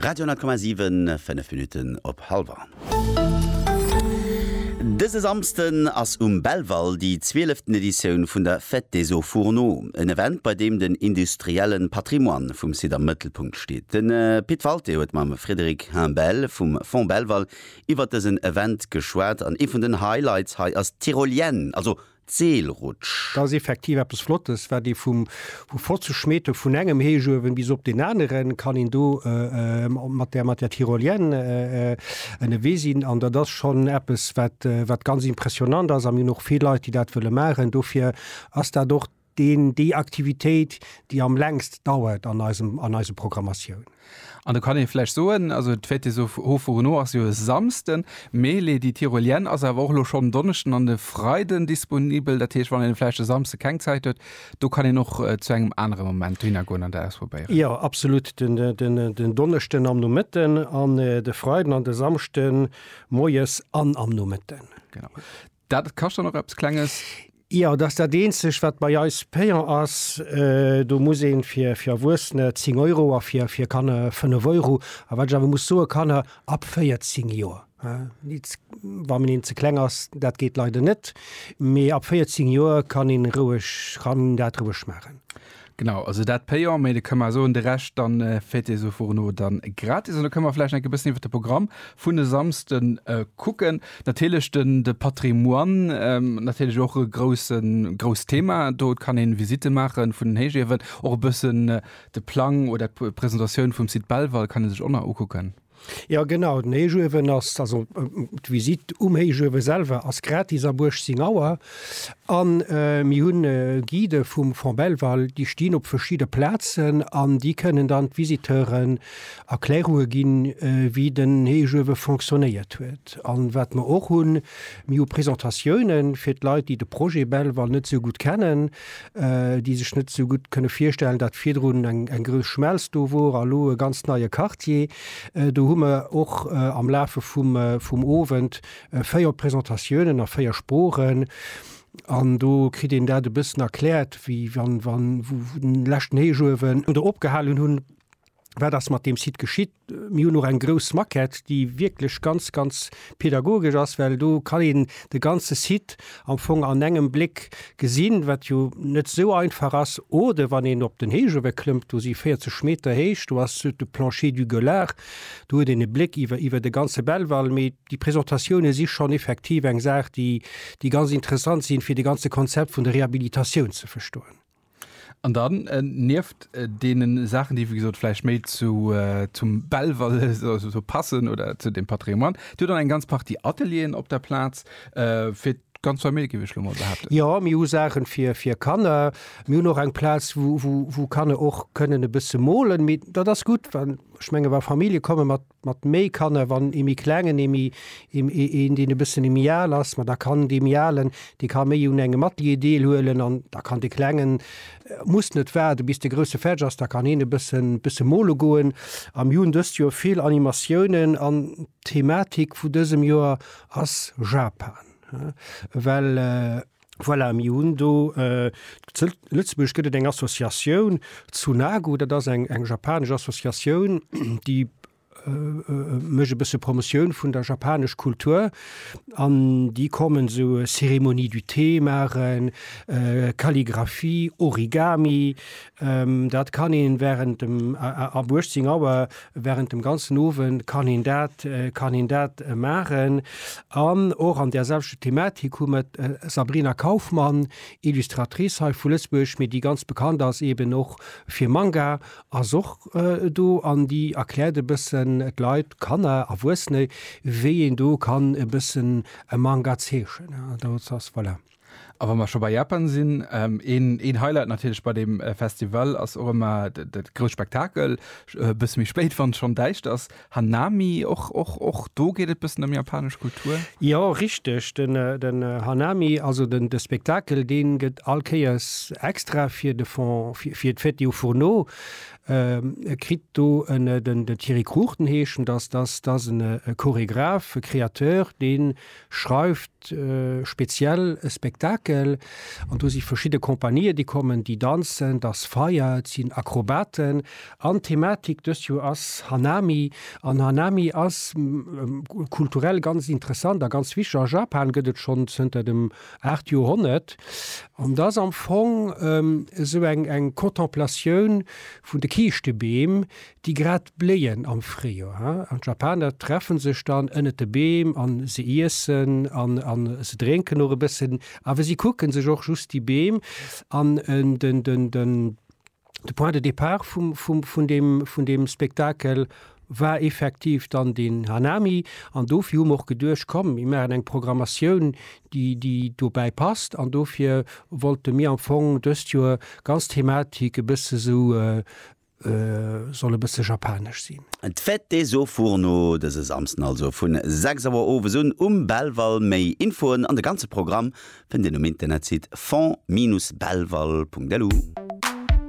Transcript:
Radio 10,7, 5 Minutten op halwer. Dëse Samsden ass um Belval déi zwieleften Editioun vun der Fête des hauts fourneaux, en Event, bei deem den industrielle Patrimoine vum Site am Mëttelpunkt steet. Den Pit Walté huet mam Frédéric Humbel vum Fonds Belval iwwert dësen Event geschwat an ee vun den Highlights hei ass d'Tyrolienne, also d'Seelrutsch. Dat ass effektiv eppes Flottes, wat ee vu 50 Meter vun engem Héichuewen bis op deen aneren kann een do mat där mat der Tyrolienne ënnewee sinn. An dat ass schonn eppes, wat wat ganz impressionnant ass. A mir hunn och vill Leit, déi dat wëlle maachen. Dofir ass dat och deen déi Aktivitéit, déi am längst dauert an eisem an eiser Programmatioun. An do kann ee vläicht soen, also d'Fête des Hauts-Fourneaux ass jo e Samsden, mee Les Die Tyrolienne ass awer och elo schonn en Donneschden an e Freiden disponibel. Dat heescht, wann een vläicht e Samsde keng Zäit huet, do kann een och zu engem anere Moment dohinner goen an dat ausprobéieren. Jo, absolut. Den Donneschden am Nomëtten an de Freiden an de Samschde moies an am Nomëtten. Genau. Dat kascht dann och eppes Klenges? Jo, dat ass dat eenzegt, wat bei eis payant ass. Do muss ee fir Erwuessene 10 Euro a fir Kanner 5 Euro. A wat ech awer muss soen, Kanner ab 14 Joer, wa een een ze kleng ass, dat geet leider net, mee ab 14 Joer kann een roueg, kann een dat roueg maachen. Genau, also dat payant, mee da kënne mer soen, de Rescht dann féiert Dir esou furen no dann gratis. An da kënne mer vläicht nach enke bëssen iwwert de Programm vun e Samsden kucken. Natierlech den de Patrimoine, natierlech och e groussen grousst Thema do. Et kann een Visite maachen vun den Héichiewen, och e bëssen de Plang oder d'Presentatioun vum Site Belval kann ee sech och nach ukucken. Jo genau, den Héichuewen ass, also d'Visitt um Héichuewe selwer ass gratis ab 18 Auer. An mir hunn Guidë vum Fonds Belval, déi stinn op verschidde Plazen an déi kënnen dann d'Visiteuren Erklärunge ginn, wéi den Héichuewe fonctionnéiert huet. An wat mer och hunn, mir hu Presentatiounen fir d'Leit, déi de Projet Belval net esou gutt kennen. äh, déi sech net so gutt kënne virstellen, dat virdrun eng, eng grös Schmelz do wor a lo e ganz neie Quartier. Äh, do hu mer och äh, am Lafe vum, äh, vum Owend äh, véier Presentatiounen a véier Sproochen. An do kritt een dat e bëssen erkläert, wéi wann, wann, wo, wo den leschten Héichuewen oder opgehalen hunn. wat ass mat dem Site geschitt. Mir hunn och eng grouss Maquette, déi wierklech ganz, ganz pedagogesch ass, well do kann een de ganze Site am Fong an engem Bléck gesinn, wat jo net esou einfach ass. Oder wann een op den Héich ewe klëmmt, do si 40 Meter héich, do ass de Plancher du Gueulard, do huet een e Bléck iwwer iwwer de ganze Belval. Mee déi Presentatioune si schonn effektiv eng Saach, déi ganz interessant sinn, fir de ganze Konzept vun der Rehabilitatioun ze verstoen. An dann, nieft deene Saachen, déi wéi gesot vläicht méi zu, zum Belval esou passen oder zu dem Patrimoine, Dir hutt dann eng ganz Partie Atelieren op der Plaz fir d'ganz Famill, géif ech lo mol behaapten? Jo, mir hu Saachen fir, fir Kanner. Mir hunn och eng Plaz, wou, wou, wou Kanner och kënnen e bësse molen. Mee dat ass gutt, well ech menge wa Famillje komme mat mat méi Kanner, wann ee méi klengen, ee méi, een deen e bëssen méi al ass, ma da kann dee méi alen, dee ka méi un engem Atelier deelhuelen an da kann de klengen, muss net waarde bis de grousse fäerdeg ass, da kann hien e bëssen, bësse mole goen. A mir hunn dëst Joer vill Animatiounen an d'Thematik vu dësem Joer ass Japan, well Voilà, mir hunn do zu Lëtzebuerg gëtt et eng Associatioun, Tsunagu, dat ass eng eng japanesch Associatioun, déi mécht e bësse Promotioun vun der japanesch Kultur. An déi kommen esou Cérémonie du thé maachen, Kalligraphie, Origami, Dat kann een während dem, ab 18 Auer, während dem ganzen Owend kann een dat, kann een dat maachen. An och an där selwechter Thematik hu mer d'Sabrina Kaufmann, Illustratrice hei vu Lëtzebuerg, mee déi ganz bekannt ass eben och fir Manga, ass och do an déi erkläert e bëssen d'Leit, Kanner, Erwuessene, wéi een do kann e bëssen e Manga zeechnen. Dozou ass, voilà. A wa mer scho bei Japan sinn, een Highlight natierlech bei deem Festival ass och ëmmer de grouss Spektakel, e bësse méi spéit, wann et schonn däischt ass, Hanami. Och do geet et e bëssen ëm japanesch Kultur. Jo, richteg. Den Hanami, also de Spektakel, dee gëtt all Kéiers extra fir de Fond, fir d'Fête au Fourneau. E kritt do den Thierry Cruchten, heeschen, dass ass e Choregraph, e Createur, dee schreift speziell e Spektakel an do si verschidde Kompanië déi kommen, déi danzen, et ass Feier, et sinn Akrobaten an d'Thematik dëst Joer ass Hanami an Hanami ass kulturell ganz interessant a ganz wichteg. A Japan gëtt et schonn zënter dem 8. Joerhonnert an et ass am Fong esou eng Contemplatioun vun de Kiischtebeem, déi grad bléien am Fréijoer, ha, an d'Japaner treffen sech dann ënnet de Beem an se iessen an an se drénken och e bëssen, awer si kucken sech och just déi Beem an. Den den den de Point de départ vum vum vun deem vun deem Spektakel war effektiv dann den Hanami an dofir hu mer och geduecht, komm mir maachen eng Programmatioun déi déi dobäi passt an dofir wollte mir am Fong dëst Joer ganz Thematik e bësse sou, Soll e bësse japanesch sinn. D'Fête des hauts fourneaux dëse Samsden also vun 6 Auer owes un um Belval. Méi Infoen an de ganze Programm fënnt Dir um Internetsite fond-belval.lu.